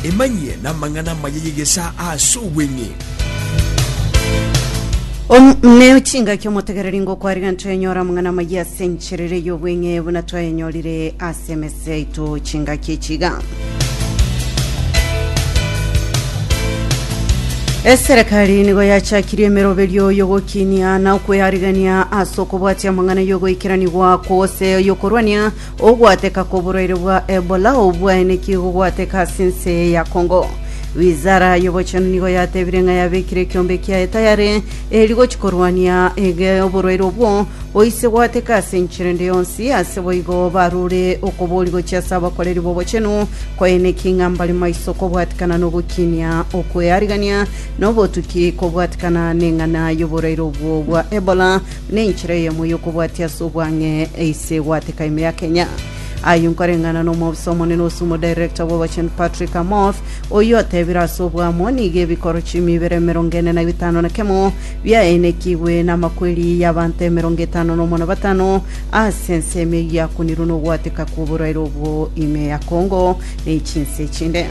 Emanyie namang'ana amaya y'egesaa ase obweng'e. Omwoneo chingaki omotegereri ngokwariga ntoyanyora amang'ana amaya ase enchera ere y'obweng'e buna twayanyorire ase emese yaito chingaki echiga. Eserekari nigo yachakirie emeroberio y'ogokinia na okweyarigania ase okobwatia amang'ana y'ogoikeranigwa kw'ogose y'okorwania Ogwateka kw'oborwaire bwa Ebola ou bwaenekire igogwateka ase ense eye ya Congo. Wizara y'obochenu nigo yatebire ng'a yabekire ekiombe kiaye tayare eri gochia korwania ege oborwaire obwo boise gwateka ase enchera ende yonsi, ase boigo barure okobori gochia ase abakoreri b'obochenu kwaenekia ng'a mbare maiso kobwatikana n'ogokinia okwearigania na obotuki kobwatikana neng'ana y'oborwaire obwo bwa Ebola Nenchera eyemo y'okobwatia ase obwang'e ase egwateka ime ya Kenya. Ayio nkoreng'ana n'omobisa omonene ase omodirector bw'Obochenu Patrick Amoth, oyio otebire ase obwamo nigo ebikoro chiumi ibere emerongo ene na bitano na kemo biaenekigwe namakweri y'abanto emerongo etano na omo na batano ase ensemo eyio yakunirwe nogwateka kw'oborwaire obwo ime ya Congo ne chinse echinde.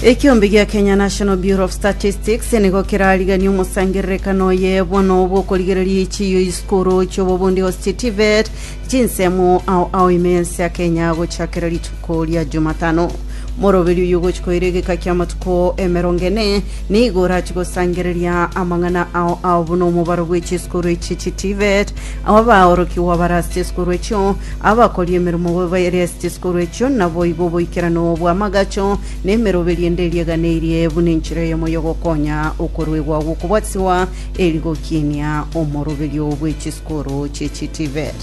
Ekeombe gia Kenya National Bureau of Statistics nigo kerariganie omosangererekano oye bono bw'okorigereria echiiyo y'isukuru chi'obobundi gose TVET chinsemo ao ao ime y'ense ya Kenya gochakera rituko ria Jumatano. Moroberi oyo ogochi koira egeka ki'amatuko emerongo ene nigo orachi gosangereria amang'ana ao ao buna omobaro bw'echisukuru echi chi TVET Aba baorokigwa barasche esukuru echio, abakori emeremo baerasche esukuru echio, naboigo oboikeranu bw'amagacho na emeroberio ende erieganeirie buna enchera eyemo y'ogokonya okoruegwa gw'okobwatisibwa eri gokiinia omoroberio bwe chisukuru chie chiTVET.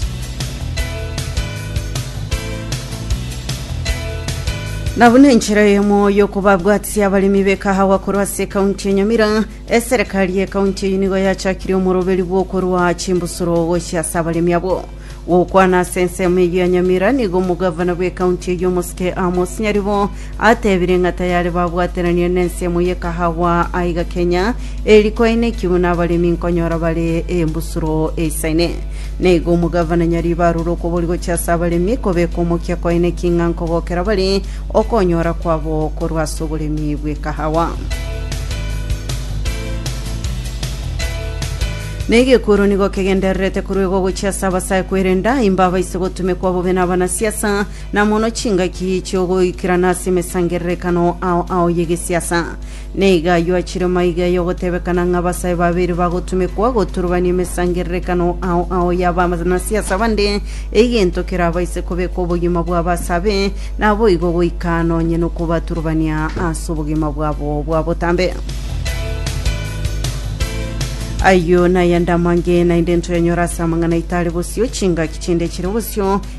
Na buna enchera eyemo y'okobabwatisia abaremi b'ekahawa korwa ase ekaunti ya Nyamira, Eserekari y'ekaunti eyio nigo yachakirie omoroberi bw'okorua chimbusuro gochia ase abaremi abwo. Gokwana ase ensemo eyio ya Nyamira, nigo omogavana bw'ekaunti eyio omosike Amos Nyaribo ateebire ng'a tayare babwateranire nensemo y'ekahawa aiga Kenya eri kwainekigwe nabaremi nkonyora bare embusuro eisaine. Naigo omogavana Nyaribo arure okobori gochia ase abaremi kobeka omokia kwaine king'anko gokera bare Okonyora kwabo korwa ase oboremi bw'ekahawa. Na egekuru nigo kegendererete koruegwa gochia ase abasae kwerenda imba abaise gotumekwa bobe na abanasiasa, na mono chingaki chi'ogoikerana ase emesangererekano ao ao y'egesiasa. Nigo ayio achire maiga y'ogotebekana ng'a abasae babere bagotumekwa goturubania emesangererekano ao ao y'abanasiasa bande, egento kerabaise kobeka obogima bw'abasabe naboigo goika nonye nokobaturubania ase obogima bwabo bwa botambe. Ayio nayande amange naende ntoyanyore ase amang'ana aito are bosio, chingaki chinde chire bosio,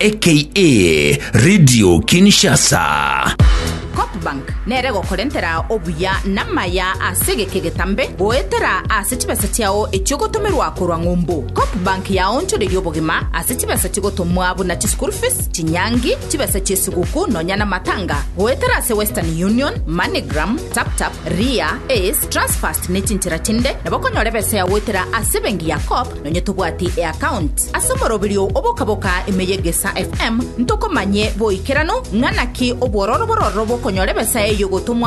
aka Radio Kinshasa. Copbank nere gokorentera obuya namaya ase egeke getambe goetera ase chibesa chiao echiogotomerwa korwa ng'umbu. Copbank yaonchoreiri obogima ase chibesa chigotomwa buna chischool fees, chinyangi, chibesa chiesiguku nonya namatanga goetera ase Western Union, Moneygram, Taptap, Ria, Ace, Transfast nechinchera chinde nabo okonyora ebesa yao goetera ase ebengi ya Cop Nonye tobwati eaccount ase omoroberio obokaboka ime y'Egesaa FM, ntokomanye boikeranu ng'a naki obwororo bororo bokonyora ebesa eyio gotomwa